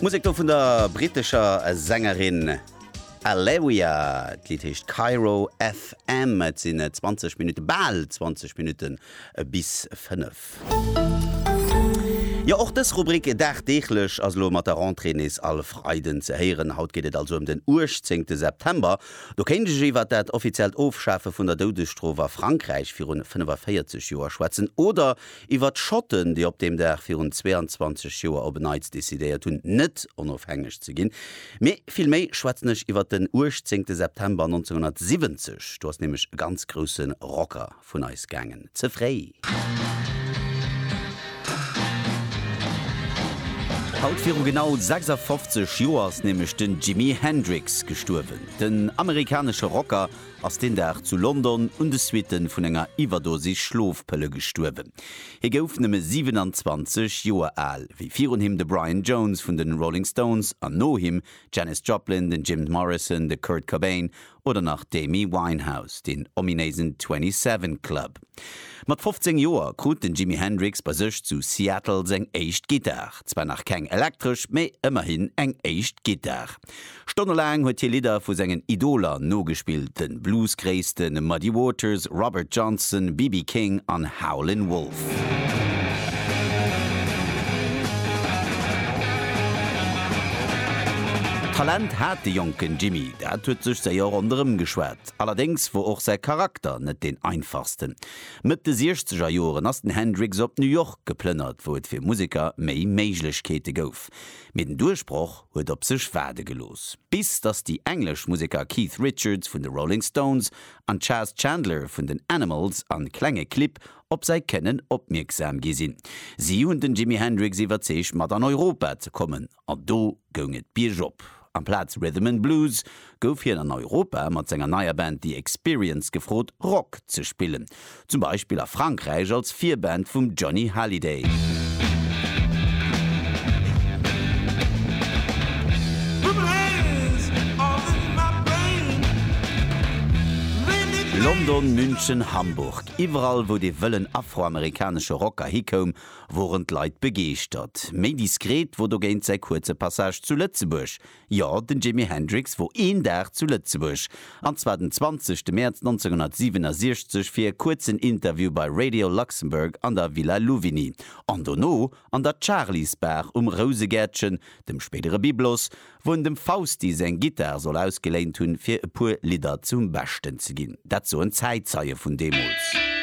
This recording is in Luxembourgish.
Musek do vun der brittescher Sängerin Aleria. D'Lidd heescht Cairo FM. Et sinn 20 Minutte, bal 20 Minutte bis 5. Jo, och dës Rubrik dagdeeglech ass elo mat der Rentrée nees all Freiden ze héieren. Haut geet et also ëm den 18. September. Do kéint ech iwwert dat offiziellt Ofschafe vun der Doudesstrof a Frankräich virun 45 Joer schwätzen oder Iwwer d'Schotten, déi op deem Dag virun 22 Joer op e Neits decidéiert hunn, net onofhängeg ze ginn. Mee vill méi schwätzen ech iwwer den 18 September 1970. Do ass nämlech e ganz grousse Rocker vun eis gaangen. Ze fréi. Haut viru genau 56 Joer ass nämlech den Jimi Hendrix gestuerwen. Den amerikanesche Rocker ass deen Dag zu London un de Suitten vun enger Iwwerdosis Schlofpëlle gestuerwen. Hie gouf nëmme 27 Joer al, wéi virun him de Brian Jones vun den Rolling Stones an no him d'Janis Joplin, den Jim Morrison, de Kurt Cobain oder nach d'Amy Winehouse, deen ominéisen 27 Club. Mat 15 Joer krut den Jimi Hendrix bei sech zu Seattle seng éischt Gittar. Zwar nach keng elektresch, mee ëmmerhin eng éischt Gittar. Stonnelaang huet hie Lidder vu sengen Idoler nogespillt, de Blues-Gréisste Muddy Waters, Robert Johnson, BB King an Howlin' Wolf. Talent hat de jonken Jimi, dat huet sech séier ronderëm geschwat. Allerdéngs wor och säi Charakter net deen einfachsten. Mëtt de Siechzeger Joren ass den Hendrix op New York geplënnert, wou et fir Museker méi Méiglechkeete gouf. Mee den Duerchbroch huet op sech waarde gelooss. Bis datt déi englesch Museker Keith Richards vun de Rolling Stones an Chas Chandler vun den Animals an klenge Clibb op säi Kënnen opmierksam gi sinn. Si hunn den Jimi Hendrix iwwerzeegt mat an Europa ze kommen. an do goung et biergop. Amplaz Rhythm and Blues gouf hien an Europa mat senger neier Band The Experience gefrot, Rock ze spillen, zum Beispill a Frankräich als Virband vum Johnny Hallyday. London, München, Hamburg, iwwerall, wou dee wëllen afroamerikanesche Rocker hikoum, woren d'Leit begeeschtert. Méi diskret wor dogéint säi kuerze Passage zu Lëtzebuerg. Jo, den Jimi Hendrix wor een Dag zu Lëtzebuerg, an zwar den 20 Mäerz 1967 fir e kuerzen Interview bei Radio Luxembourg an der Villa Louvigny, an dono an der Charly's Bar um Rousegäertchen, dem spéidere Byblos, wou en dem Fausti seng Gittar soll ausgeléint hunn, fir e puer Lidder zum Beschten ze ginn. Dat soen Zäitzeie vun deemools.